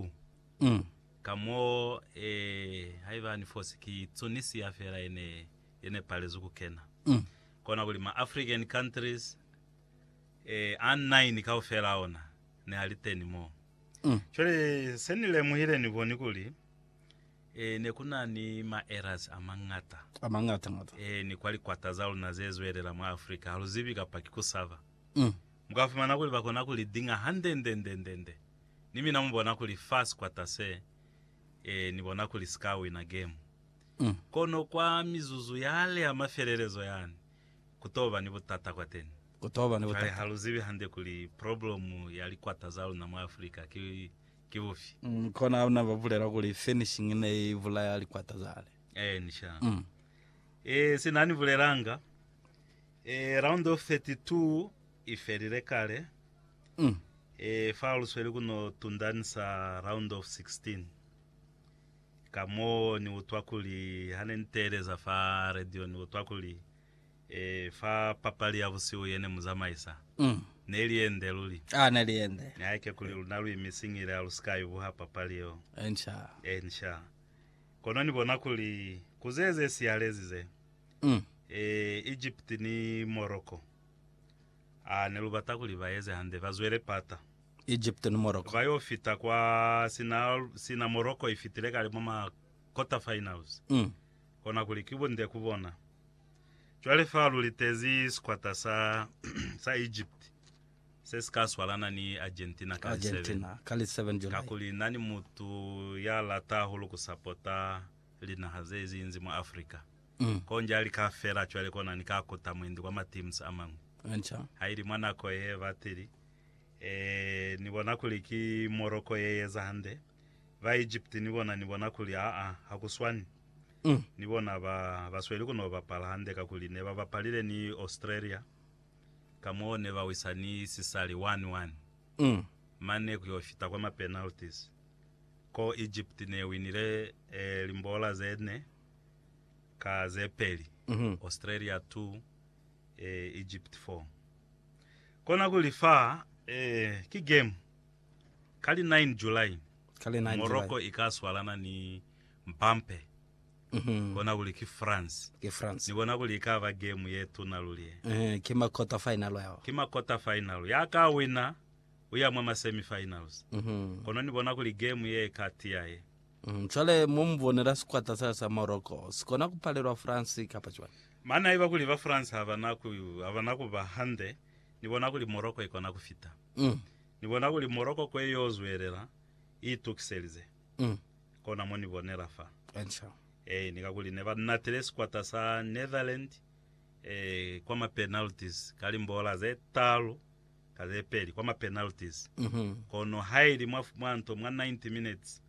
Ku Mm. Ka mo, eh, haiba ni fosi ki Tunisia fela ye ne, ye ne palezwi ku kena. Mm. Kona kuli ma African countries, eh, a nine kaufela a ona ne a li teni mo. Mm. Cwale se ni lemuhile ni boni kuli, eh, ne ku na ni ma errors a mañata. A mañata ngata. Eh, ni kwa likwata za luna ze zwelela mwa Africa, ha lu zibi kapa ki ku saba. Mm. Mu ka fumana kuli ba kona ku li dinga hande nde, nde, nde, nde. Ni mina mubona kuli fa sikwata se, ee, ni bona kuli si ka wina gemu. Kono kwa mizuzu yale ya mafelelezo yani, ku t'o ba ni butata kwateni. Cwale ha lu zibi hande kuli problemu ya likwata za luna mwa Afrika ki, ki bufi. Kona ha na ba bulela kuli furnishing ne i bulaya likwata zale. Ee, ni sha. Ee, sina ni bulelanga, ee, round of 32 i felile kale, Mm. E, fa lu sweli ku no tundanisa Round of 16, ka mo ni utwa kuli, ha ne ni teeleza fa radio, ni utwa kuli, e, fa papali ya busihu ye ne mu zamaisa, Mm. ne li ye nde luli. Ah, ne li ye nde. Nihaike kuli luna lu imisingile ha lu si ka ibuha papali yeo. Enca. Enca. Kono ni bona kuli, ku ze ze sihalezi ze, Mm. e, Egypt ni Morocco, A ne lu bata kuli ba eze hande, ba zwele pata. Egipito ni Morocco. Ba yo fita kwa sina, sina Morocco i fitile kale mwa ma quarter-finals. Kona kuli ki bunde ku bona. Cwale fa lu litezi sikwata sa, sa Egypt se si ka swalana ni Argentina ka li 7. Argentina, ka li 7 July. Kakuli na ni mutu ya lata hahulu ku sapota linaha ze ziinzi mwa Africa. Konja li ka fela cwale kona ni ka kuta mwendi kwa ma teams a mañwi. Ha ili mwa nako ye batili, ni bona kuli ki Morocco ye eza hande. Ba Egypt ni bona ni bona kuli aa ha ku swani. Ni bona ba, ba sweli ku no bapala hande kakuli ne ba bapalile ni Australia. Kamoo ne ba wisa ni sisali one, one. Mane ku yo fita kwa ma penalties. Ko Egypt ne winile limbola ze ne, ka ze peli, Australia 2, eh, Egypt 4. Kona kuli fa, eh, ki game ka li 9 July, Ka li 9 July. Morocco i ka swalana ni Mpampe, kona kuli ki France. Ki France. Ni bona kuli i ka ba game ye tuna luli ye. Ehe, ki ma quarter final yao. Ki ma quarter final. Ya ka wina, u ya mwa ma semi finals. Kono ni bona kuli game ye i ka tiya ye. Mm, cwale mo mu bonela sikwata sa sa Morocco si kona ku palelwa France kapa cwani? Mane haiba kuli ba France ha ba na ku, ha ba na ku ba hande, ni bona kuli Morocco i kona ku fita. Mm. Ni bona kuli Morocco kwe y'o zwelela i itukiselize. Mm. Kona mo ni bonela fa. Enca. Ee, ni kakuli ne ba natile sikwata sa Netherlands, ee, kwa ma penalties ka limbola ze talu. ka ze peli kwa ma penalties, kono haili mwa, mwa nto mwa 90 minutes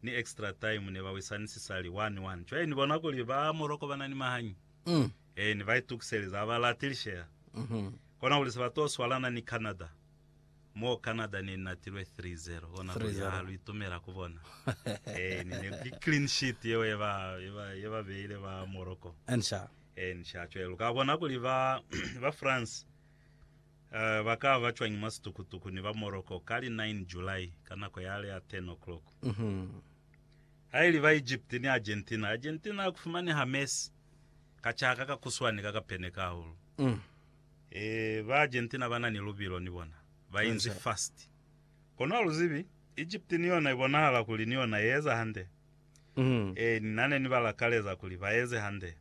ni extra time ne ba wisani sisali 1-1. Cwale ni bona kuli ba Morocco ba na ni mahanyi. Ee, ne ba itukiselezi, ha ba lati lishea. Kona kuli se ba to swalana ni Canada, mo Canada ne i natilwe 3-0, kona kuli, haa, lu itumela ku bona. Ee, ni ne, ki clean sheet yeo ye ba, ye ba, ye ba beile ba Morocco. Ee, ni sha. Cwale lu ka bona kuli ba, ba France, Ba ka ba cwañi mwa situkutuku ni ba Morocco ka li 9 July ka nako yale ya 10 o'clock? Haili ba Egypt ni Argentina, Argentina ya ku fumaneha Messi ka c'a ka ka kuswani ka ka peneka hahulu. Eeh, ba Argentina ba na ni lubilo ni bona, ba inzi fast. Kono ha lu zibi, Egypt ni yona i bonahala kuli ni yona ye eza hande. Eeh, na ne ni ba lakaleza kuli ba eze hande.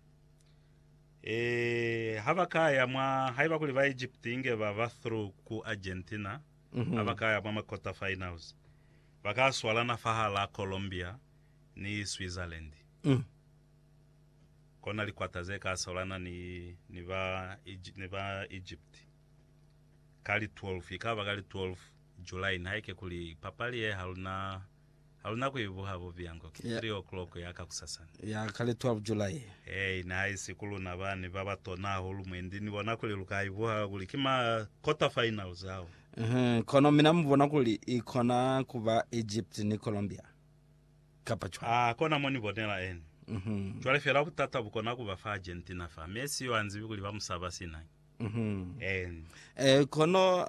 Ee, ha ba ka ya mwa, haiba kuli ba Egypt inge ba ba through ku Argentina, ha ba ka ya mwa ma quarter finals, ba ka swalana fahalaa Colombia ni Switzerland. Kona li quarter ze ka swalana ni, ni ba, ni ba Egypt. Ka li 12, ikaba ka li 12 July, nihaike kuli papali ye ha luna Ha lu na ku i buha bubiya ngo ki 3 o'clock ya ka kusasana. Ya ka li 12 July. Hei ne ha isi ku luna ba ne ba ba tona hahulu mwe ndi ni bona kuli lu ka i buha kuli ki ma quarterfinals ao. Uhum, kono mina mu bona kuli i kona ku ba Egypt ni Colombia, kapa cwalo? Aa, kona mo ni bonela ene. Uhum. Cwale fela butata bu kona ku ba fa Argentina fa. Messi yo ha nzibi kuli ba mu saba sina ki. Uhum. Eeni. Eh, kono